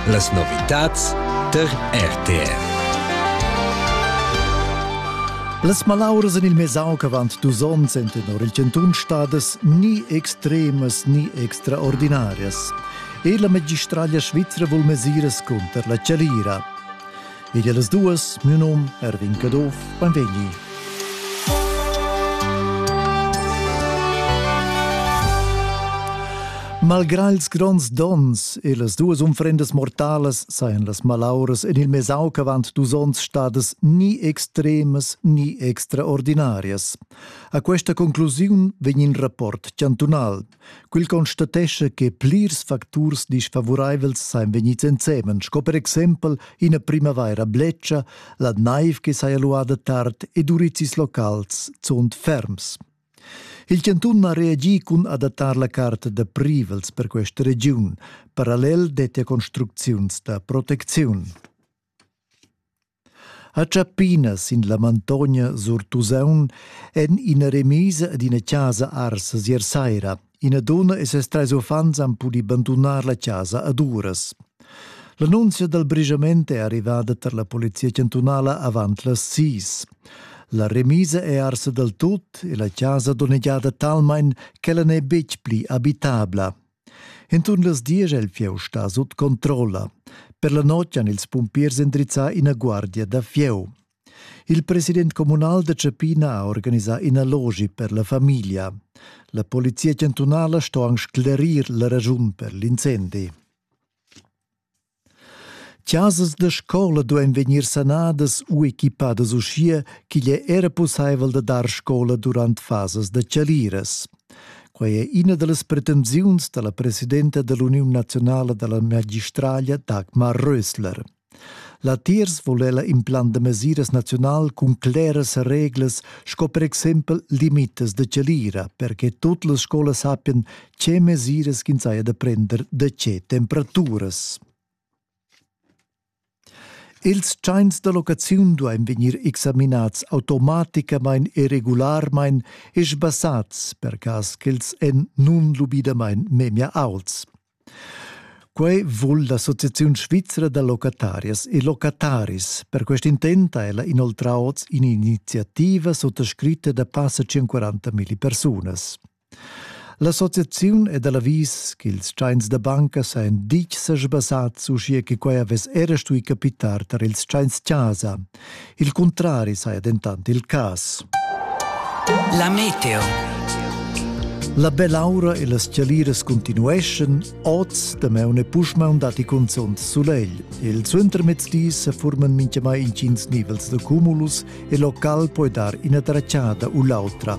Las novitads tar RTR. Las malauras en il Mesauc avant dus onns en tenor il chantun stadas ni extremas ni extraordinarias. E la magistraglia svizra vul mesiras cunter la chalira. Ed las duas, mio nom Erwin Caduff, benvegni. Malgrà ils gronds dons e las duas unfrendas mortalas sajan las malauras en il mesau ch'avant dus onns stadas ni extremas ni extraordinarias. A questa conclusiun vegn in rapport chantunal Quel constatescha che plirs facturs disfavuraivels sajan vegnids ensemen, sco per exempel ina primavaira bletscha, la naiv che saja luada tard ed urizis locals zunt ferms. Il chantun ha reagì cun adattar la carta da privels per questa regiun. Parallel dettia construcziuns da protecziun. ha Giappina sin la Mantogna sur Tusaun en ina remisa ad ina casa arsa ier saira. Ina donna e ses trais uffants han pudì bandunar la casa ad uras. L'annunzia dal brisament è arrivada tar la polizia chantunala avant las sis. La remisa è arsa dal tut e la casa donnegiada talmain ch'ella n'è betg pli abitabla, Enturn las diesch è il fieu stà sut controlla. Per la notg han ils pumpiers endrizzà ina guardia da fieu. Il president communal da Cepina ha organisà ina logi per la famiglia. La polizia chantunala sto anc sclerir la raschun per l'incendi. Chasas da scola duein vegnir sanadas u equipadas uschia ch'igl ei era pusseivel da dar scola durant fasas da tschaliras. Quei è ina dallas pretensiuns dalla presidenta dall'Uniun naziunala dalla magistraglia Dagmar Rösler. Latiers vul ella implant da mesiras naziunal cun claras reglas sco per exempel limitas da tschalira per che tut las scolas sappien Che mesiras ch'ins haja da prender da tge temperaturas? Ils tschains da locaziun duain vegnir examinads automaticamain e regularmain e sbassats per cas ch'els èn nunlubidamain memia auts. Quai vul l'Associaziun svizra da locatarias e locataris. Per quest intent ha ella inoltrà oz in'iniziativa suttascritta da passa 140 milli persunas. L'associaziun è da l'avis ch'ils tschains da banca sajan ditg sesbassads uschia che quai avess era stui capitar tar ils tschains-chasa. Il cuntrari saja dentant il cas. La meteo. La bell'aura e las chaliras continueschan, oz, damaun e puschmaun datti cunzunt sulegl. Il suentermezdi sa forman mintgamai intgins nivels da cumulus e local poi dar ina tracciada u l'autra.